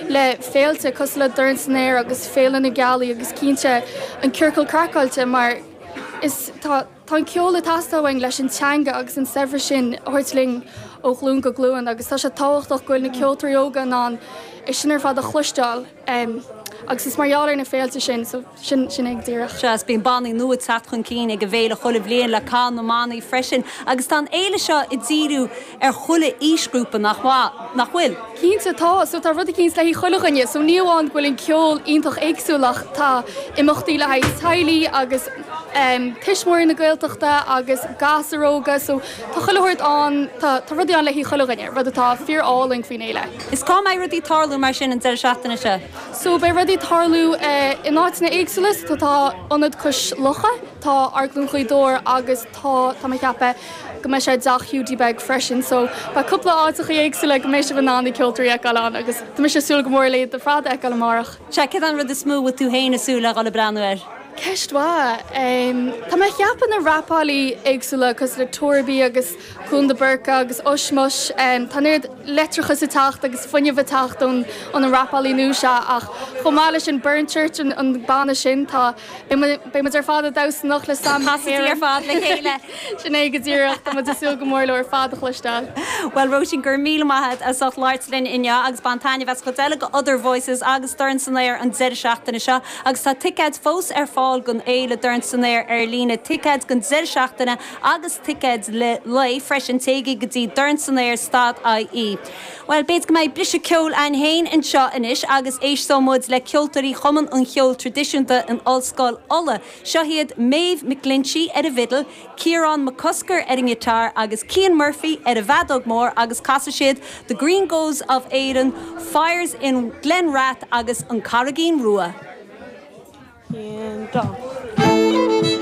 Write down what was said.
le féilte cosúil le Dorn san Aer agus Féile na Gealaí agus cinnte an Ciorcal Craiceáilte mar is tá an ceol ag teastáil uainn leis an teanga agus an saibhreas sin a thabhairt linn ó ghlúin go glúin agus tá sé tábhachtach go bhfuil na ceoltóirí óga in ann é sin ar fad a chloisteáil agus is mar gheall ar na féilte sin sin é go díreach. Sea, bíonn bannaí nua ag teacht chun cinn ag an bhféile chuile bhliain le cath na mbannaí freisin agus tá an fhéile seo ag díriú ar chuile aoisghrúpa, nach bhfuil? Cinnte, tá, so tá rud eicínt le haghaidh chuile dhuine, so ní amháin go bhfuil an ceol iontach éagsúil ach tá imeachtaí le haghaidh teaghlaigh agus tuismitheoirí na Gaeltachta agus gasúir óga, so tá chuile shórt ann, tá, tá rudaí ann le haghaidh chuile dhuine, rud atá fíor álainn faoin fhéile. Is cá mbeidh rudaí ag tarlú mar sin an deireadh seachtaine seo? So beidh rudaí ag tarlú in áiteanna éagsúla, so tá Ionad Cois Locha, tá Amharclann Ghaoth Dobhair agus tá, tá mé ag ceapadh go mbeidh sé i dTeach Hiúdaí Beag freisin. So beidh cúpla áiteachaí éagsúla go mbeidh sibh in ann na ceoltóirí a fheiceáil ann agus tá mise ag súil go mór leo uilig ar fad a fheiceáil amárach. Sea, céard é an rud is mó a bhfuil tú féin ag súil le dhul ag breathnú air? Ceist mhaith. Tá mé ag ceapadh na rapálaithe éagsúla cosúil le Torby agus. Cuan de Búrca agus Ushmush. Tá an oiread leictreachais ag teacht agus fuinneamh ag teacht ó na rapálaithe nua seo ach chomh maith leis an Burren Church an banna sin tá beidh muid ar fad ag damhsa in éineacht leo sin ar fad le chéile. Sin é go díreach tá muid ag súil go mór leo ar fad a chloisteáil. Bhuel Róisín, go raibh míle maith agat as ucht labhairt linn inniu agus bain taitneamh as an gcuid eile de Other Voices agus Dorn San Aer an deireadh seachtaine seo agus tá ticéid fós ar fáil don fhéile Dorn San Aer ar líne, ticéid don deireadh seachtaine! agus ticéid lae freisin téigí go dtí dorn san aer dot IE. Bhuel, b'fhéidir go mbeidh briseadh ceoil againn féin anseo anois agus éisteoidh muid le ceoltóirí Chumann an Cheoil Traidisiúnta in Ollscoil Uladh. Seo iad Maeve McGlinchey ar an bhfidil, Ciarán Mac Cosgair ar an ngiotár agus Cian Murphy ar an bhfeadóg mhór agus casfaidh siad The Green Groves of Erin, Fires in Glen Rath agus An Carraigín Rua.